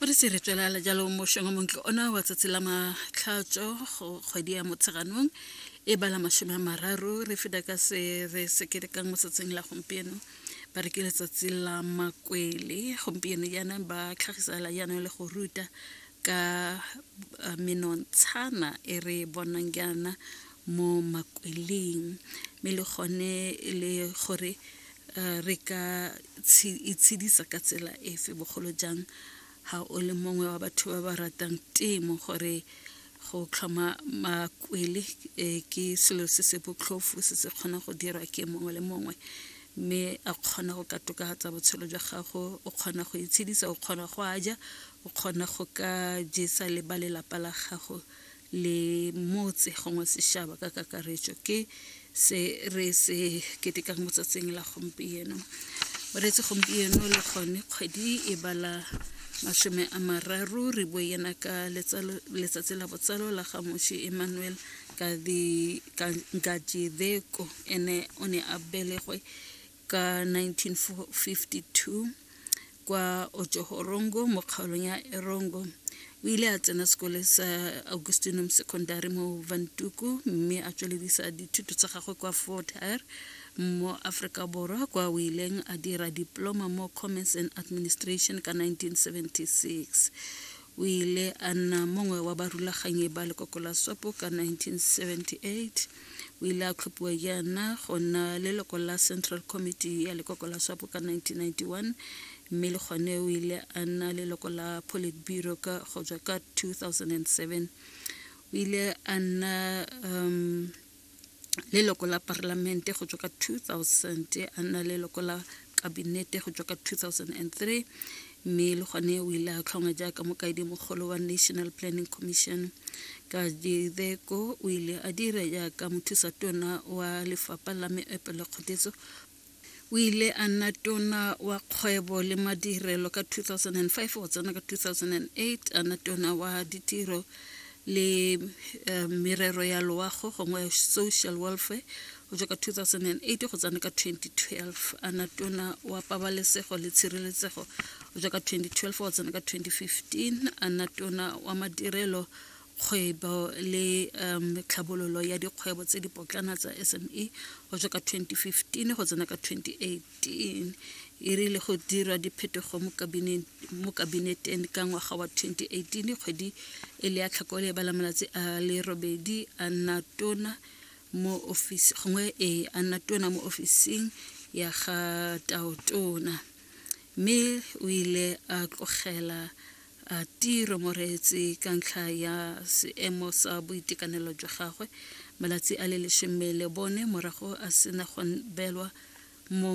o re se re tswelela jalo mošeng wa montle ona wa tsatsi la matlhatso go kgwedi ya motsheganong e bala masome a mararo re feta ka se re se kerekang mo tsatsing la gompieno ba re ke letsatsi la makwele gompieno yana ba tlhagisela yana le go ruta ka uh, menontshana e re bonang yana mo makweleng mme le gone e le gore Eh, re ka itshedisa ka tsela efe bogolo jang ga o le mongwe wa batho ba ba ratang temo gore go tlhoma makwele eh, ke selo se se botlhofo se se kgona go dirwa ke mongwe le mongwe mme a kgona go ka tokafatsa botshelo jwa gago o kgona go itshedisa o kgona go a ja o kgona go ka jesa le ba lelapa la gago le motse gongwe sešaba ka kakaretšo ke se re se ketekang mo tsatsing la gompieno bareetsi gompieno le gone kgwedi e bala masome a mararo re bo yena ka letsatsi la botsalo la gamoši emmanuel gadideko ene o ne a belegwe ka 1952 kwa ojohorongo mo kgaolong ya erongo o ile a tsena sekole sa augustinum secondary mo vantuku mme a tsweledisa dithuto tsa gagwe kwa fort hare mo aforika borwa kwa o ileng a dira diploma mo commerce and administration ka 1976 O ile a nna mongwe wa barulaganyi ba lekoko la SWAPO ka 1978. O ile a tlhophiwa jaana go nna leloko la Central Committee ya lekoko la SWAPO ka 1991 mme le gone o ile a nna leloko la Politburo ka go tswa ka 2007. O ile a nna um, leloko la parlamente go tswa ka 2000 a nna leloko la kabinete go tswa ka 2003 mme le gone o ile a tlhongwa jaaka mokaedi mogolo wa national planning commission ka dideko o ile a dira jaaka mothusa tona wa lefapha la meepo le kgodiso O ile a nna tona wa kgwebo le madirelo ka 2005 go tsena ka 2008 a nna tona wa ditiro le eh, merero ya loago gongwe social welfare go tswa ka 2008 go tsena ka 2012 a nna tona wa pabalesego le tshireletsego go tswa ka 2012 go tsena ka 2015 a nna tona wa madirelo kgwebo le um tlhabololo ya dikgwebo tse di potlana tsa SME go tswa ka 2015 go tsena ka 2018 e rile go dirwa diphetogo mo kabineteng ka ngwaga wa 2018 kgwedi e le ya tlhakole ba la malatsi a le robedi a nna tona mo office gongwe e a nna tona mo ofising ya ga taotona mme o ile a tlogela a tiro mo reetse ka ntlha ya seemo sa boitekanelo jwa gagwe malatsi a le lesome le bone morago a sena go belwa mo